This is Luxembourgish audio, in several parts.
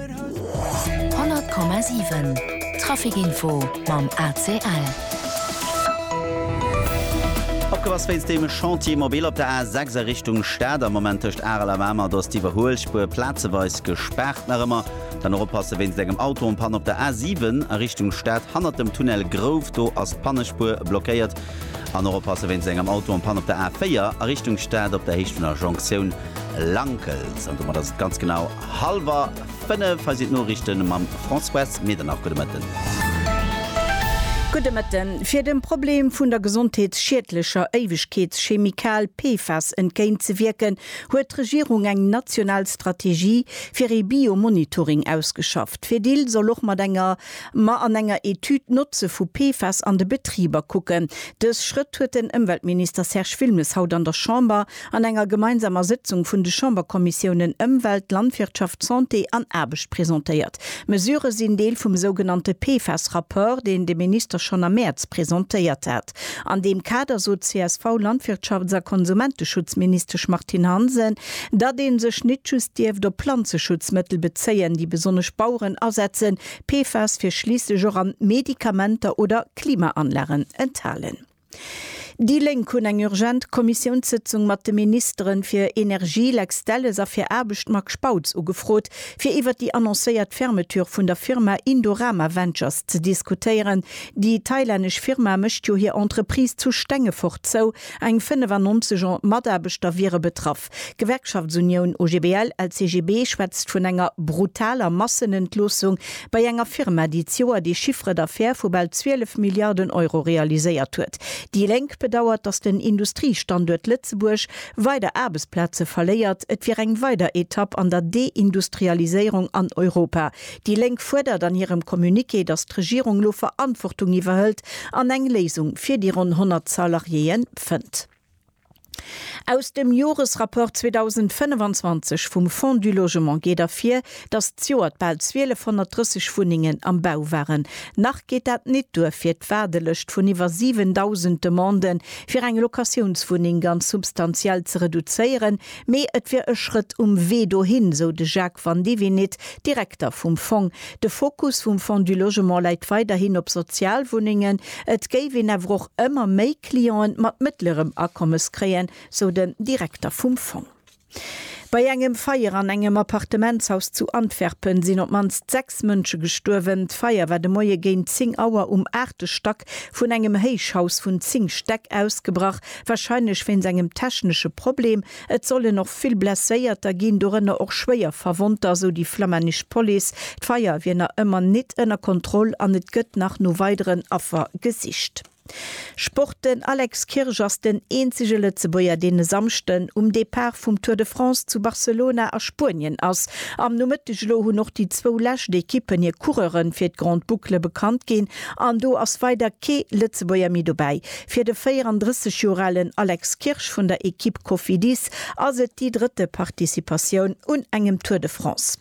100,7 Traficinfo mam ACL. Opgepass wéinst dem Chantier mobile op der A 6 a Richtung Stad. Am Moment tëscht Arel a Mamer, do ass d'Iwwerhuelspuer plazeweis gespaart nach ëmmer. Dann och oppasse wéinst engem Auto an Panne op der A 7 a Richtung Stad hannert dem Tunnel Grouf, do ass d'Pannespuer blockéiert. An och oppasse wéinst engem Auto an Panne op der A 4 a Richtung Stad op der Héicht vun der Jonktioun Lankels. An domat ass et ganz genau. Halwer 5, hei sinn d'Noriichten mam Françoise Medernach. Gudde Mëtten. Gudde Mëtten. Fir dem Problem vun der gesondheetsschiedlecher Éiwegkeetschemikal PFAS entgéint ze wierken, huet d'Regierung eng national Strategie fir ee Biomonitoring ausgeschafft. D'Fedil soll och mat enger ma an enger Etüd d'Notze vu PFAS an de Betriber kucken. Dës Schrëtt huet den Ëmweltminister Serge Wilmes haut an der Chamber An enger gemeinsamer Sëtzung vun de Chamberkommissiounen Ëmwelt, Landwirtschaft, Santé an Aarbecht presentéiert. D'Mesurë sinn Deel vum sougenannte PFAS-Rapport, deen de Minister schonn am Mäerz presentéiert hat. An deem Kader sot d'CSV-Landwirtschafts a Konsumenteschutzministesch Martine Hansen, datt ee sech nit just dierft op Planzeschutzmëttel bezéien, déi besonnesch Baueren asetzen. PFAS wier schliisslech och an Medikamenter oder Klimaanlagen enthalen. Déi Lénk hunn eng urgent Kommissiounssëtzung mat de Ministeren fir Energie Lex Delles a fir Aarbecht Marc Spautz ugefrot, fir iwwer déi annoncéiert Fermeture vun der Firma Indorama Ventures ze diskutéieren. Déi thailännesch Firma mécht jo hir Entreprise zu Stengefort zou, eng 95 Mataarbechter wiere betraff. D'Gewerkschaftsunioun OGBL, LCGB schwätzt vun enger brutaler Massenentloossung bei enger Firma, déi d'Joer de Chiffre d'affaires vu bal 12 Milliarden Euro realiséiert huet. Déi Lénk bedauert, datt den Industriestanduert Lëtzebuerg weider Aarbechtsplaze verléiert. Et wier eng weider Etapp an der Deindustrialiséierung an Europa. Déi Lénk fuerdert an hirem Communiqué, datt d'Regierung lo Verantwortung iwwerhëlt an eng Léisung fir déi ronn 100 Salariéeë fënnt. Aus dem Joresrapport 2025 vum Fonds du Logement geet ervir, datt d'Joert bal 1230 Wunnengen am Bau waren. Nach geet dat nit duer fir d'Waardelëscht vun iwwer 7.000 Demande fir eng Locatiounswunneng ganz substantiell ze reduzéieren, mee et wier e Schrëtt um Wee dohin, sou de Jacques Vandivinit, Direkter vum Fong. De Fokus vum Fonds du Logement läit weiderhin op Sozialwunnengen, et géif een awer och ëmmer méi. Clienten mat mëttlerem Akommes kréien, sou den Direkter vum Fong. Bei engem Feier an engem Appartementshaus zu Antwerpen sinn op d'mannst sechs Mënsche gestuerwen. D'Feier war de Moie géint 10 Auer um aachte Stack vun engem Héichhaus vun 10 Stäck ausgebrach, warscheinlech wéinst engem technesche Problem. Et sollen och vill Blesséierter ginn, dorënner och schwéier Verwonnter, sou déi flammännesch Police. D'Feier wier nach ëmmer nit ënner Kontroll an et gëtt nach no weideren Affer gesicht. Sport, Den Alex Kirsch ass den eenzege Lëtzebuerger, deen e Samschden um Depart vum Tour de France zu Barcelona a Spuenien ass. Am Nomëtteg elo hunn och déi zwou lescht Ekippen hir Coureure fir d'Grande Boucle bekannt ginn an do ass weider kee Lëtzebuerger méi dobäi. Fir de 34 Joer alen Alex Kirsch vun der Ekipp Cofidis ass et déi drëtte Participatioun un engem Tour de France.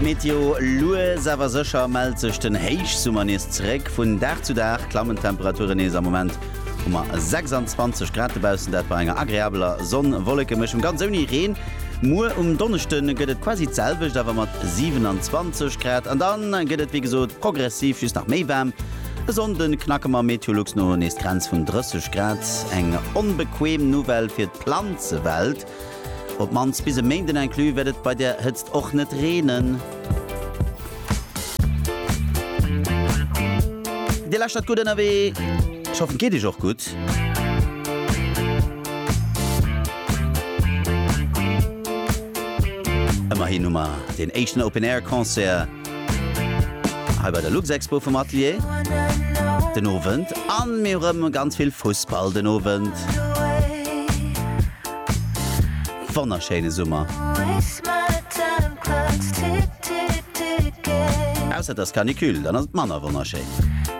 D'Meteo, Lues awer sécher mellt sech den Héichsummer nees zeréck. Vun Dag zu Dag klammen d'Temperaturen nees. Am Moment hu mer 26 Grad dobaussen, dat bei enger agreabeler Sonn-Wollekemischung, ganz ouni Reen. Muer um Donneschde gëtt et quasi d'selwecht, awer mat 27 Grad. An da gëtt et wéi gesot progressiv just nach méi waarm. E Sonnde knacke mer Meteolux no nees d'Grenz vun 30 Grad. Eng onbequeem Nouvelle fir d'Planzewelt, op d'mannst bis e Méinden inclus wäert et bei der Hëtzt och net reenen. Dir lauschtert Gutt Ënnerwee, ech hoffen et geet Iech och gutt. Ëmmerhin hu mer den éischten Open Air Concert. Hei bei der Luxexpo vum Atelier den Owend an mir rëm ganz vill Fussball den Owend. Wonnerschéine Summer. Ausser et ass Canicule, dann ass et manner wonnerschéin.